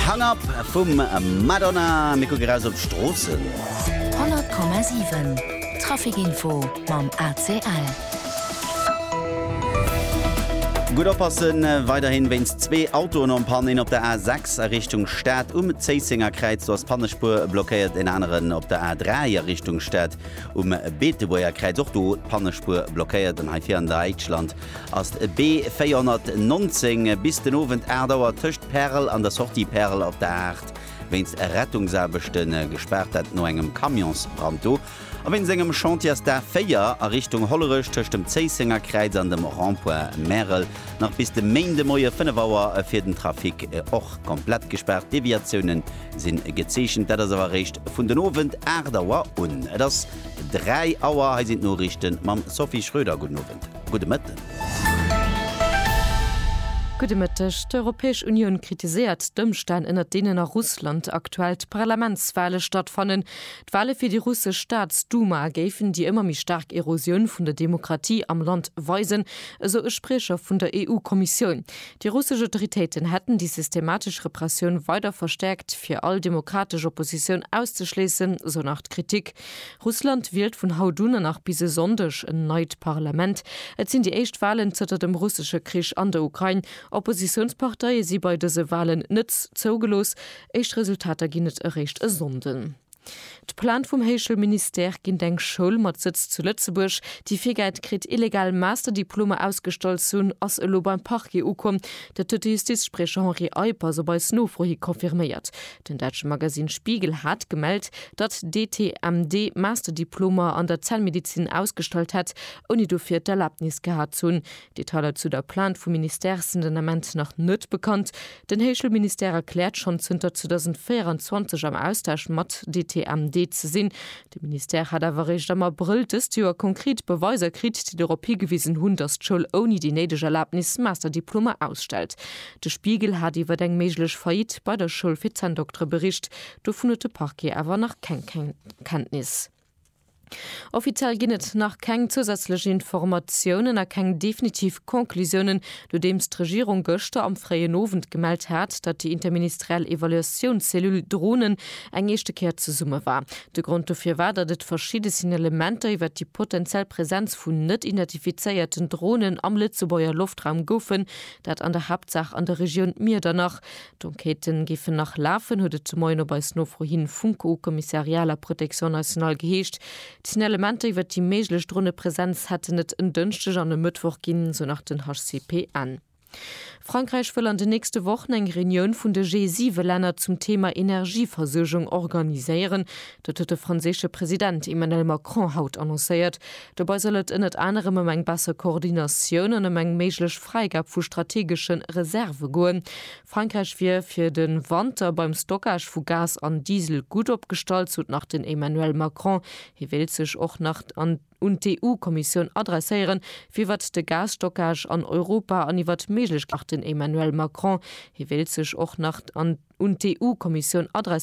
Hung Up vum Madonna. Mir kucken eraus op d'Stroossen. 100,7 Trafikinfo mam ACL. Gutt oppassen, weiderhin wéinst zwee Autoen en Panne, een op der A 6 a Richtung Stad um Zéissenger Kräiz, do ass d'Pannespuer blockéiert, een aneren op der A 3 a Richtung Stad um Beetebuerger Kräiz, och do d'Pannespuer blockéiert, an hei vir an Däitschland. ass d'B 419 bis den Owend 8 Auer tëscht Perl an der Sortie Perl op der Aart wéinst Rettungsaarbechte gespaart, dat no engem Camionsbrand do. A wéinst engem Chantier ass d'A 4 a Richtung Hollerech tëscht dem Zéisséngerkräiz an dem Rond-point Märel nach bis de Méindemoie 5 Auer fir den Trafic och komplett gespaart. Deviatioune si gezeechent, dat ass awer eréischt vun den Owend 8 Auer un. Et ass 3 Auer, hei sinn d'Noriichte mam Sophie Schröder. Gudden Owend. Gudde Mëtten. Gudde Mëtteg. D'Europäesch Unioun kritiséiert d'Ëmstänn, ënner deenen a Russland aktuell d'Parlamentswale stattfannen. D'Wale fir déi russesch Staatsduma géifen déi ëmmer méi staark Erosioun vun der Demokratie am Land weisen, esou e Spriecher vun der EU-Kommissioun. Déi russesch Autoritéiten hätten déi systematesch Repressioun weider verstäerkt, fir all demokratesch Oppositioun auszeschléissen, esou nach d'Kritik. Russland wielt vun haut un a nach bis e Sonndeg en neit Parlament. Et sinn déi éischt Walen zënter dem russesche Krich an der Ukrain. Oppositiounsparteie si bei dëse Walen net zougelooss. Éischt Resultater ginn et eréischt e Sonnden. D'Pläne vum Héischel Ministère ginn d'eng Schoul mat Sëtz zu Lëtzebuerg, déi virgäit kritt, illegal Masterdiplomer ausgestallt ze hunn, ass elo beim Parquet ukomm. Dat huet de Justizspriecher Henri Eipp ass op eis Nofro hi confirméiert. Den däitsche Magasinn Spiegel hat gemellt, datt d'ETMD Masterdiplomer an der Zellmedizin ausgestallt hätt, ouni dofir d'Erlaabnis gehat ze hunn. Detailer zu der Plainte vum Ministère sinn den Ament nach net bekannt. Den Héichschoulministère erkläert schonn zënter 2024 am Austausch mat d'ETMD ze sinn, De Ministère hat awer eréischt am Abrëll dëst Joer konkret Beweiser kritt, déi dorop higewisen hunn, datt d'Schoul ouni déi néideg Erlabnis Masterdiplomer ausstellt. De Spiegel hat iwwer eng méiglech Faillite bei der Schoul fir Zänndoktere bericht. Dovun huet de Parquet awer nach keng Kenntnis. Offiziell ginn et nach keng zousätzlech Informatiounen a keng definitiv Conclusiounen, Nodeems d'Regierung gëschter am fréien Owend gemellt hat, datt déi interministeriell Evaluatiounscellule Dronen eng éischte Kéier zesumme war. De Grond dofir war, datt et verschidde Signalementer iwwer déi potentiell Präsenz vun net identifizéierten Dronen am Lëtzebuerger Loftraum goufen, dat an der Haaptsaach an der Regioun Miedernach. D'Enquête géifen nach lafen, huet et de Moien op eis Nofro hin vum co-commissariat à la Protection nationale geheescht. D'Signalementer iwwer déi méiglech Dronepresenz hätten et en Dënschdeg an e Mëttwoch ginn, sou nach den HCPN. Frankräich wëll an den nächste Wochen eng Reunioun vun de G7-Länner zum Theema Energieversuergung organiséieren. Dat huet de franséische President Emmanuel Macron haut annoncéiert. Dobei soll et ënnert anerem ëm eng besser Koordinatioun an ëm eng méiglech Fräigab vu strategesche Reserve goen. Frankräich wier fir de Wanter beim Stockage vu Gas an Diesel gutt opgestallt, sot nach den Emmanuel Macron. Hie wéilt sech och nach an un d'EU-Kommissioun adresséieren, firwat de Gasstockage an Europa an iwwer d'Méiglechkeeten nach den Emmanuel Macron. Hie wéilt sech och nach an un d'EU-Kommissioun adresséieren.